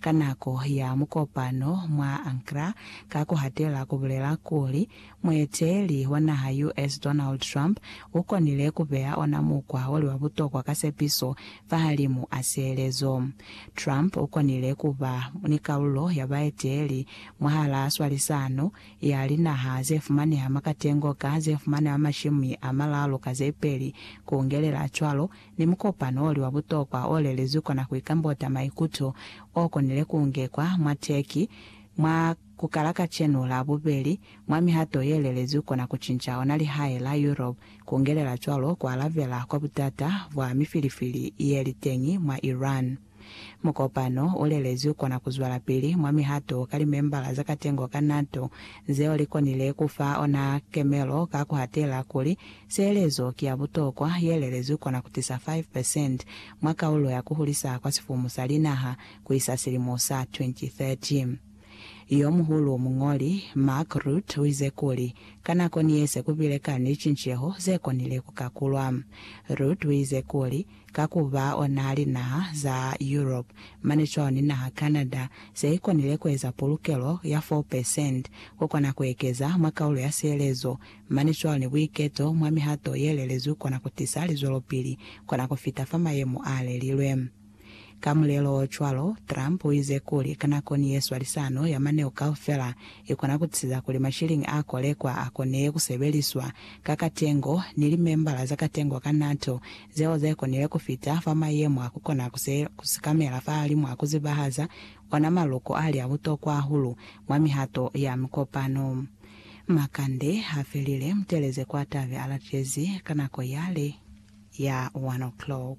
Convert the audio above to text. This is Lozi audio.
Ka nako ya mukopano mwa Ankra, ka ku hatela ku bulela kuli, mueteeli wa naha US. Donald Trump u konile ku beya ona mukwa o li wa butokwa ka sepiso fahalimu a sielezo. Trump u konile ku ba ni kalulo ya baeteeli mwahalaa swalisano ya linaha ze fumaneha mwa katengo ka ze fumaneha mashimi a malalu ka ze peli, ku ngelela cwalo ni mukopano oli wa butokwa o lelezwi kona ku ikambota maikuto o konile ku ngekwa mwa Turkey mwa ku kala kacenu la bubeli mwa mihato ye lelezwi kona ku cinca ona lihae la Europe, ku ngelela cwalo ku alabela kwa butata bwa mifilifili ye li teñi mwa Iran. Mukopano u lelezwi ku kona ku zwalapili mwa mihato ka limembala za katengo ka NATO zeo li konile ku fa ona kemelo ka ku hatela kuli, Sielezo ki ya butokwa ye lelezwi ku kona ku tisa 5 percent mwa kaulo ya ku hulisa kwa sifumu sa linaha ku isa silimo sa 2030. Yo muhulu muñoli, Mark Rutte, u ize kuli, Ka nako ni ye se ku bile kani licinceho ze konile ku kakulwa. Rutte u ize kuli, ka ku ba ona linaha za Europe mane cwalo ni naha Canada ze i konile ku eza pulukelo ya 4 percent, ku kona ku ekeza mwa kaulo ya sielezo mane cwalo ni buiketo mwa mihato ye lelezwi kona ku tisa lizwelopili kona ku fita fa mayemo a lelilwe. Ka mulelo o cwalo, Trump uize kuli, Ka nako ni yeswa lisano ya maneo kaufela, ikona kutisiza kuli mashilingi a kolekwa a konile kusebeliswa ka katengo, ni limembala za katengo ka NATO zeo ze konile kufita fa mayemo a kukona kusikamela fahalimu a kuzibahaza ona maluko ali a butokwa hahulu mwa mihato ya mikopano. Makande hafelile, muteleze kwa tabe alatezi ka nako yale ya one o'clock.